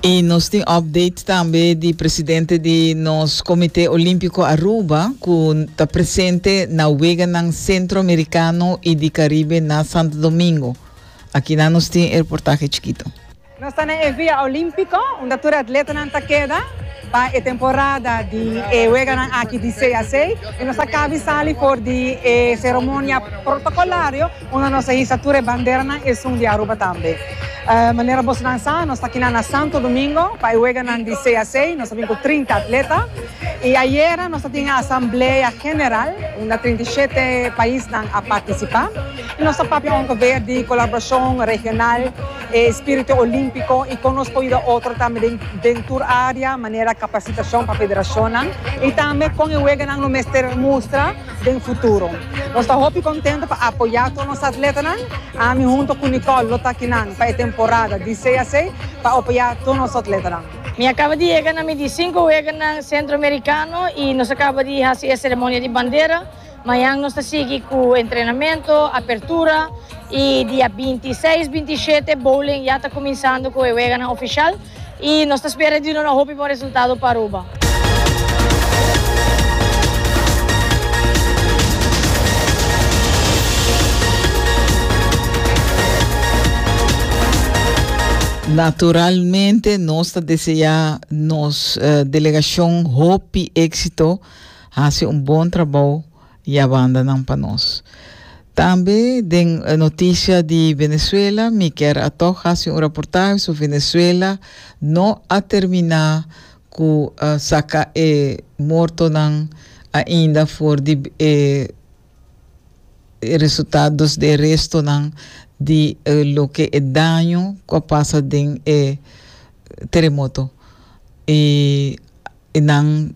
Y nos tin update tambe di presidente di nos Comité Olímpico Aruba cu ta presente na weganan Centroamericano y di Caribe na Santo Domingo. Akinan nos tin e reportahe chikito. Nos ta na e Via Olímpico unda tur e atletanan ta keda pa e temporada di e weganan aki di CAC y nos a cabi sali for di e ceremonia protocolario Unda nos a hisa tur e banderanan esun di Aruba tambe. Manera bosonan sa, nos ta kina na Santo Domingo pa e weganan di CAC, nos a bin ku trinta atleta i ayera nos a tin e asamblea general unda trinta i shete paisnan a partisipá i nos a papia onkover di kolaborashon regional, e spiritu olímpiko i kon nos por yuda otro tambe den den tur área manera kapasitashon pa federashonnan i tambe kon e weganan lo mester mustra. den futuro. Nos ta hopi kontento pa apoyá tur nos atletanan. Ami hunto ku Nicole lo ta akinan pa e temporada di sei a sei pa apoyá tur nos atletanan. Mi a kaba di yega na mi di sinku weganan Sentroamerikano i nos a kaba di hasi e seremonia di bandera. Mañan nos ta sigui ku entrenamentu, apertura i dia binti seis, binti shete bowling ya ta kuminsando ku e weganan ofishal. y nos ta spera di duna hopi bon resultado pa Aruba. Naturalmente nos ta desea nos delegacion hopi exito, haci un bon trabao. y a bandanan pa nos. Tambe den noticia di Venezuela mi kier atoch haci un raportahe so Venezuela no a termina cu saca e mortonan ainda for di e resultados di e restonan di loke e daño cu a pasa den e teremoto y nan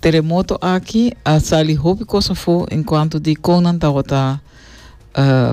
Teremoto aki a sali hopi kos afó en kuantu di kon nan tabata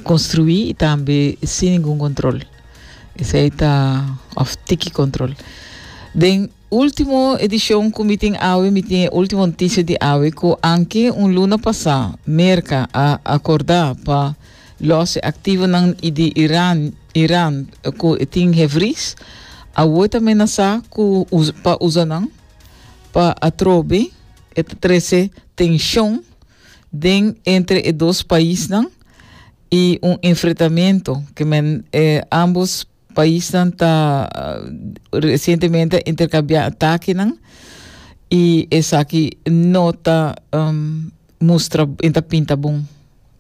konstruí i tambe sin ningun kontrol. Esei ta òf tiki kontrol. Den último edishon ku mi tin awe, mi tin e último notisia di awe ku anke un luna pasá Merka a akordá pa lòs e aktivonan di Iran Iran ku e tin hefris, awor ta menasá ku pa usa nan. Pa atrobe e ta trece tension den entre e dos paisnan y un enfrentamento ke men e ambos paisnan ta recientemente intercambia atakenan y esaki no ta um, mustra y ta pinta bon.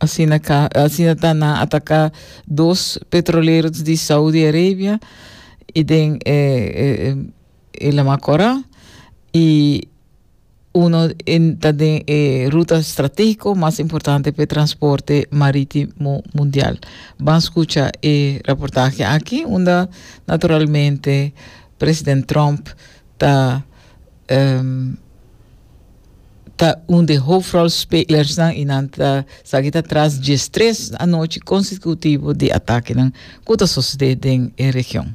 Asina ka, asina ta na ataka dos petroleros di Saudi Arabia y den e, e, e e lama Korá, i uno ta den e ruta stratégiko mas importante pa e transporte marítimo mundial. Ban skucha e raportahe aki unda naturalmente president Trump ta um ta un di hofrolspelersnan i nan ta sa aki ta tras dies tres anochi konsekutivo di atakenan ku ta sosodé den e region.